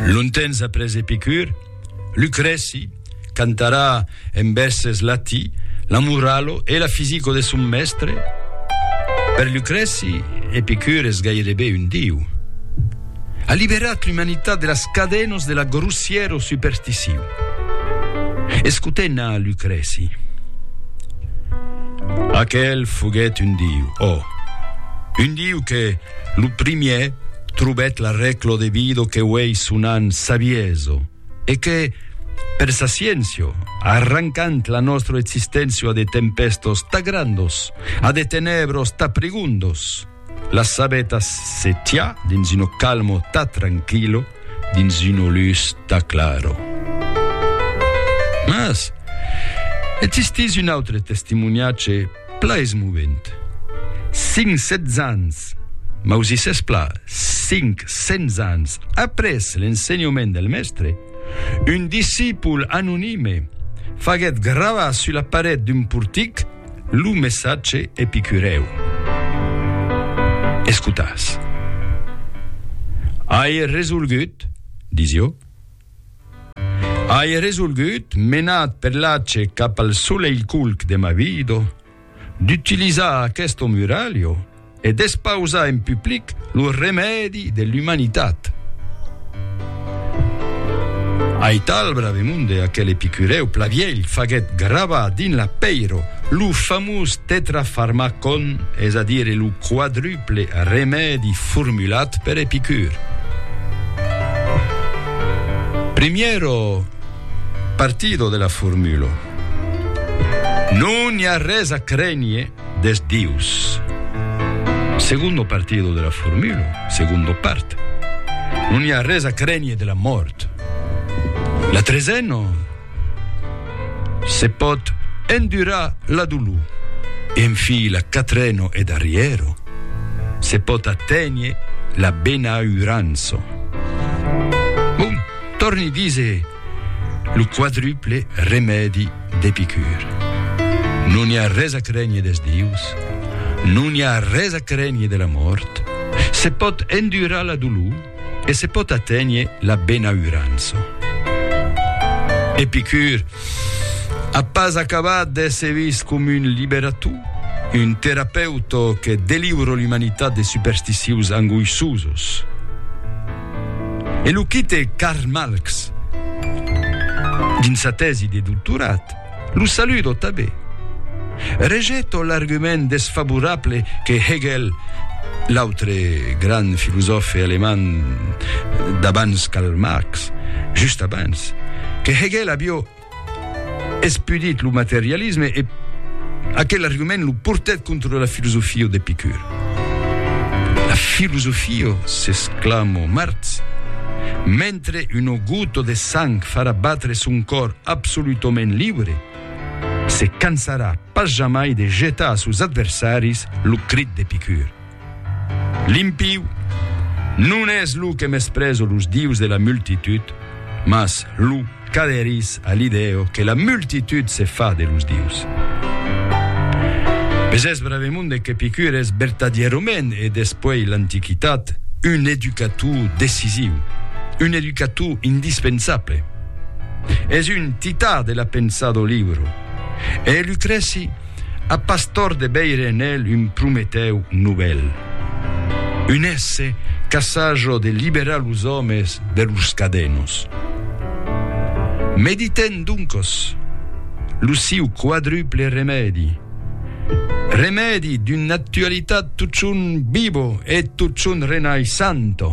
Longtemps après Epicur, Lucrèci cantarà en vèrses lati la moralo e la fisico de son mèstre. Per Lucrèci, Epicur es gairebe un diu. A liberat l'umanitat de las cadenos de la grossièro supersticion. Escotem na Lucrèci. Aquel foguèt un diu, ò, un diu que, Lo primièr trobèt la rèclo de Vido que uèi sonan savieso, e que, per sa sciéncio, arrancant la nòstro existéncia de tempèstos ta grandos, a de tenèbros ta prigondos, las sabetas se tiá dins uno calmo ta tranquillo, dins uno lus ta claro. Mas existís un autre testimoniatge, Pla es movent. Cinc sètz ans, mausissètz pla, cinc cents ans après l'ensenhament del Mèstre, un discipol anonime faguèt gravar sus la paret d'un portic lo messatge epicurèu. Escotatz. Ai resolgut, disió. Ai resolgut, menat per l'ace cap al soleilculc de ma vido, d'utilizar aquesto muralho e d'espausar en public lo remèdi de l'umanitat. Aital Bravemunde, aquel epicurèu plavielh, faguèt gravar dins la pèiro lo famós Tetrafarmacon, es a dire lo quadruple simple remèdi formulat per Epicur. Primièro partido de la formula. Non i a res a crénher des dius. Segundo partido de la formula, segundo part. Non i a res a crénher de la mòrt. La tresena. Se pòt endurar la dolor, enfila Catreno e Darriero, se pòt aténher la benaurança. Bon, tòrni dise lo quadruple remèdi d'Epicur. Non i a res a crénher des dius, non i a res a crénher de la mòrt, se pòt endurar la dolor, e se pòt aténher la benaurança. Epicur a pas acabat d'èsser vist com un liberator, un terapeuta que deliura l'umanitat de supersticius angoissosos. E lo quite Karl Malx, dins sa tèsi de doctorat, Lo saludo tanben. Rejeto l'argument desfavorable que Hegel, l'autre grand filosòfe alemand d'abans Karl Marx, just abans, que Hegel avió espudit lo materialisme e aquel argument lo portèt contra la filosofia d'Epicur. La filosofio, s'exclamò Martz, mentre una gota de sang farà batre son còr absolutament libre, se cansarà pas jamai de jetar a sos adversaris lo crit d'Epicur, L'impiu non es lo que mesprezo los dius de la multitud, mas lo Qu'aderís a l'idèo que la multitud se fa de los dius. Mès es bravemonde qu'Epicur es vertadièrament e despuèi l'Antiquitat un educator decisiu, un educator indispensable. Es un tità de la pensada o liuro e Lucrèci, A Pastor de veire en el un Prometèu novèl. Un èsse qu'assaja de liberar los òmes de lors cadenos. Meditèm doncos lo siu quadruple remèdi, remèdi d'una actualitat totjorn vivo e totjorn renaissanta.